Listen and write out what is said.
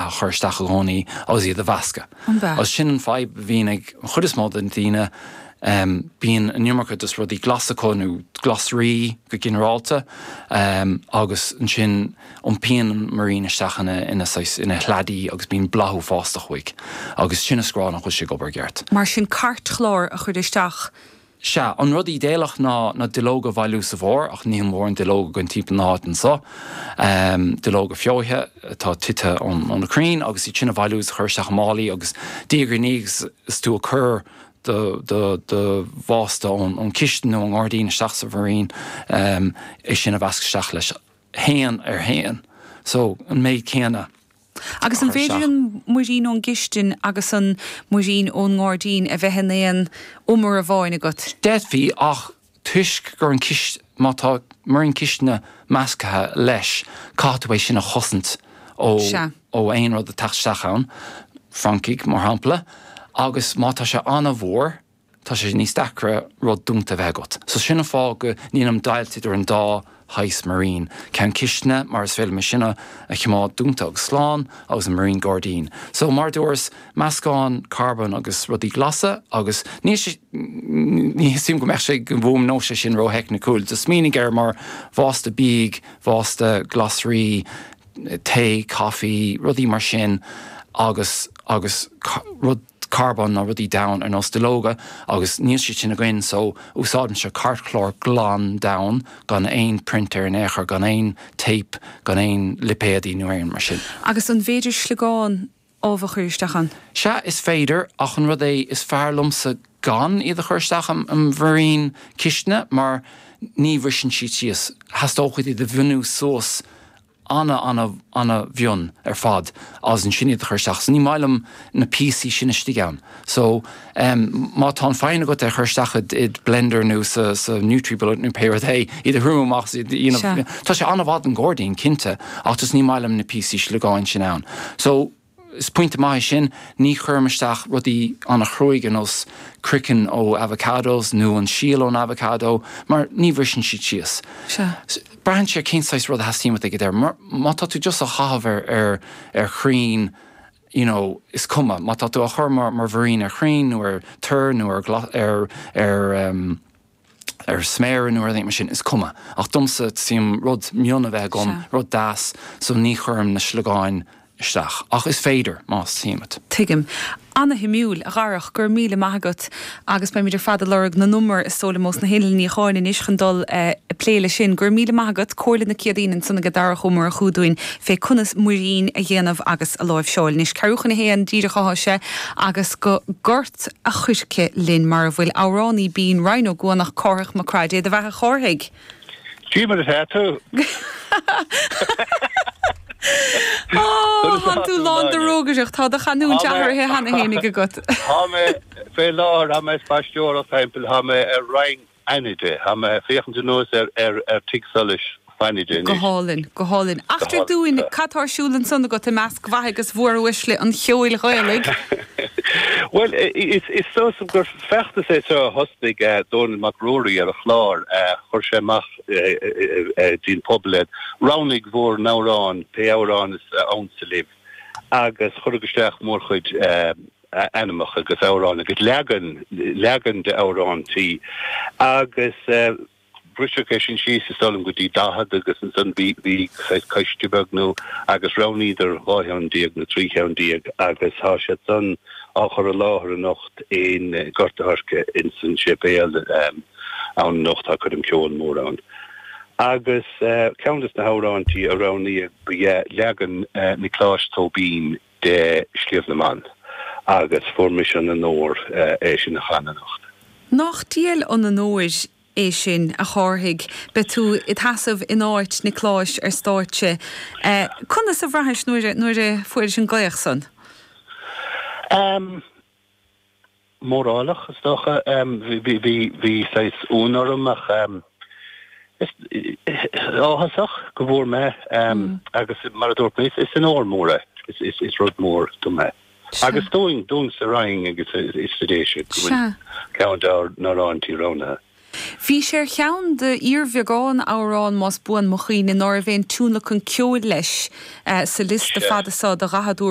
a chur isteach i gcónaí agus iad a mheascadh. Agus sin an fadhb a bhíonn ag an chuid is mó de na daoine, bíonn an iomarca de rudaí glasa acu, nó glasraí go ginearálta, agus ansin iompaíonn an múirín isteach ina saghas, ina shladaí agus bíonn boladh uafásach uaidh agus sin is a rá nach bhfuil sé ag obair i gceart. Mar sin cairtchlár a chur isteach. Sea, an rud ídéalach ná na duilleoga a bhailiú sa bhfómhar, ach níl mórán duilleog againn timpeall na háit anso. Duilleoga feoite atá tite ó na crainn agus iad sin a bhailiú is a chur isteach i málaí agus diaidh ar ndiaidh is tú ag cur do bhásta ón chistin nó ón ngairdín isteach sa mhúirín, é sin a mheascadh isteach leis, haon ar haon, so, an méid céanna. Agus an féidir an múirín ón gcistin agus an múirín ón ngairdín a bheith in aon umar amháin agat? D'fhéadfaí, ach toisc gur má tá múirín cistine measctha leis, caithfidh tú é sin a chosaint ó aon rud ag teacht isteach ann, francaigh mar shampla, agus má tá sé an-mhór, tá sé níos deacra rud dúnta a bheith agat. So sin an fáth go ndéanaim deighilt idir an dá shaghas múirín, ceann cistine mar is féidir liom é sin a choimeád dúnta agus slán agus an múirín gairdín. So mar a dúras, meascán carbóin agus rudaí glasa agus níl sé, ní theastaíonn uaim go mbeadh sé, go bhfuaimneodh sé sin ró-theicnicúil, just smaoinigh air mar bhásta bídh, bhásta glasraí, tae, coffee, rudaí mar sin agus, agus rud. carbón ná rudaí donn ar nós duilleoga agus níl siad sin againn so úsáidimse cairtchlár glan donn gan aon print air in aon chor, gan aon téip, gan aon lipéadaí nó aon rud mar sin. Agus an bhféidir sliogán ubh a chur isteach ann? Sea is féidir ach an rud é is fearr liomsa gan iad a chur isteach i múirín cistine mar ní bhriseann siad síos, theastódh uait iad a mhionú suas ana ana ana mhion ar fad is ansin iad a chur isteach so ní maith liom na píosaí sin istigh ann so em má tá an fhoighne agat é a chur isteach id id blender nó sa sa nutribullet nó pé rud é iad a thriomú amach so iad you know tá sé ana mhaith don gairdín cinnte ach just ní maith liom na píosaí sliogáin sin ann so Is pointe maith é sin, ní chuirim isteach rudaí ana chruaidh ar nós croiceann ó avocados nó an síol ón avocado mar ní bhriseann siad síos. Braitheann sé ar cén saghas rud a theastaíonn uait ag an deireadh. Má tá tú just á chaitheamh ar chrainn, you know, is cuma. Má tá tú á chur mar mhúirín ar chrainn nó ar toir nó ar ar sméar nó rud éigin mar sin, is cuma. Ach domsa, teastaíonn uaim rud mion a bheith agam, rud deas, so ní chuirim na sliogáin isteach. Ach is féidir, más teastaíonn uait. Tuigim. Ana-shuimiúil, a Dharach, go raibh míle maith agat agus beimid ar fad ag lorg na n-umar is dóigh liom ós na hinnill níocháin anois chun dul ag plé leis sin. Go raibh míle maith agat, comhairle na Céadaoine ansan aige Darach Ó Murchú dúinn fé conas muirín a dhéanamh agus a láimhseáil. Anois, ceathrú chun a haon díreach athá sé agus go t a' Choirce linn mar a bhfuil amhránaí binn Rinn Ó gCuanach, Cárthach Mac Craith, Dé do bheatha a Chárthaigh! Goidé mar atá tú! Ó, thá tú lán de rógaireacht, thá do chanúint athraithe cheana fhéinig agat! Thá mé fé láthair, thá mé ag spaisteoireacht thimpeall, thá mé ar Rinn. Fhánaide. Tá mé ag féachaint anuas ar Tigh Solais Fhánaide anois. Go hálainn, go hálainn. Eachtraigh dúinn cad tá ar siúl ansan agat i measc mhaithe agus mhóruaisle an cheoil Ghaelaigh? Bhuel, is dócha gur feachtas é seo a thosnaigh Dónall Mac Ruairí ar a chlár. Chuir sé amach dtí'n pobal é, roghnaigh bhur n-amhrán, pé amhrán is ansa libh, agus cuireadh isteach mórchuid. a ainmneacha agus amhráin agus leagan, leagan de amhráintí agus briseadh é sin síos is dóigh liom go dtí daichead agus ansan bhí, bhí saghas coiste beag nó agus roghnaíodar dhá cheann déag nó trí cheann déag agus tá siad san á chur i láthair anocht in Gort a' Choirce ins an séipéal ann anocht tá coirm ceoil mór ann. Agus ceann des na hamhráintí a roghnaíodh ba ea leagan Niocláis Tóibín de Shliabh na mBan, agus fuair mise an onóir é sin a chanadh anocht. Nach diail an onóir é sin, a Chárthaigh, beidh tú id sheasamh in áit Niocláis ar stáitse. Conas a bhraithis nuair a fuairis an glaoch san? mórálach is dócha. Bhí saghas ionadh orm ach is áthasach go bhfuair mé é agus mar a dúirt mé is onóir mhór é. Is rud mór dom é. Agus dúinn, dúinn sa Rinn agus ins na Déise go bhfuil ceann dár n-amhráintí roghnaithe. Bhí sé ar cheann d'fhíorbheagán amhrán, más buan mo chuimhne, nár bhain tionlacan ceoil leis sa liosta fada seo de dhaichead